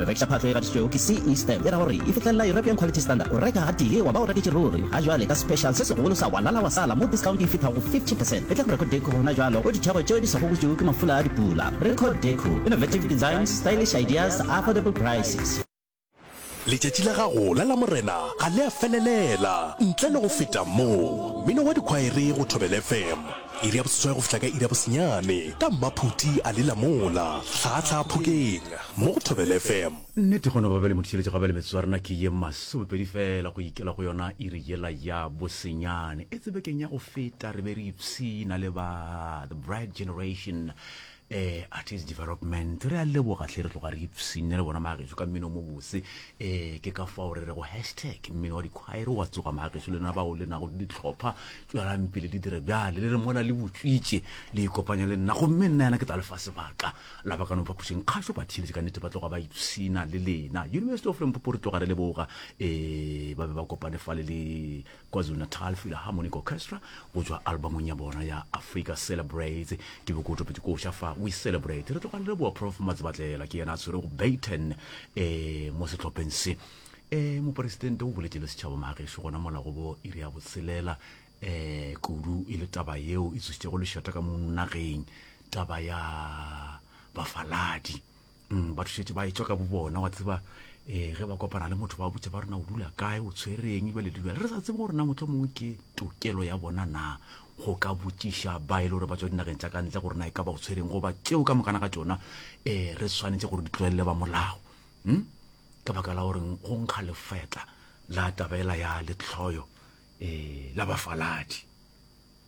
Go rekiša phatlo e gatišitšwego ke CE Stamp e ra gore e fihlelela European Quality Standard. O reka gatee wa ba o reketše ruri. Ga jwale ka special se segolo sa walala wa sala mo discount e fithago 50 percent. E tla go Record Deco gona jwalo go dithekgo tšeo di sa gogotšwego ke mafula a dipula. Record Deco, innovative designs, stylish ideas, affordable prices. Letšatši la gago la Lamorena ga le a felelela ntle le go feta mo. Mmino wa Dikhwaere go Thobela FM. Iri ya boseswai go fihla ka iri ya bosenyane ka mmaphuti a lela mola hlaahlaa phokeng mo go Thobela FM. Nnete go no ba bjale mothišeletši gabjale metsotso ya rena ke ye masomepedi feela go ikela go yona iri yela ya bosenyane. Etse bekeng ya go feta re be re ipshina le ba The Bride Generation eh artist development re a leboga hle re tloga re ipsine le bona maageso ka mmino mo bose eh ke ka fao re re go hashtag mmino wa dikhwaere wa tsoga maageso le na bao le nago le ditlhopha tswelang pele di dire bjale le re mola le botswitše le ikopanya le nna gomme nna yana ke tla lefa sebaka la ba ka no phapošeng kgašo ba theeletše ka nnete ba tloga ba ipsina le lena university of lempopo re tloga re leboga eh ba be ba kopane fale le KwaZulu-Natal Philharmonic Orchestra go tšwa albamong ya bona ya Africa Celebrates. Ke Bokoto Pitikoša fa We Celebrate. Re tloga re leboa Prof Matsibatlela, ke yena a tshwerego baton um mo sehlopheng se. Um Moporesidente o boletše le setšhaba maagešo gona mola go bo iri ya botshelela um kudu e le taba yeo e tsošitšego lešata ka mo nageng, taba ya bafaladi. mm, ba thušetse ba etswa ka bo bona wa tseba um ge ba kopana le motho ba botse ba rena o dula kae o tshwereng ebale dibjale re sa tsebe gore na motlho mongwe ke tokelo ya bona na go ka botšiša ba e le gore ba tswa dinageng tsa ka ntle gore na e ka ba o tshwereng goba tseo ka mokana ka tsona um re tshwanetse gore di tlwelele ba molao um ka baka la goreng go nkga lefetla la tabela ya letlhoyo um la bafaladi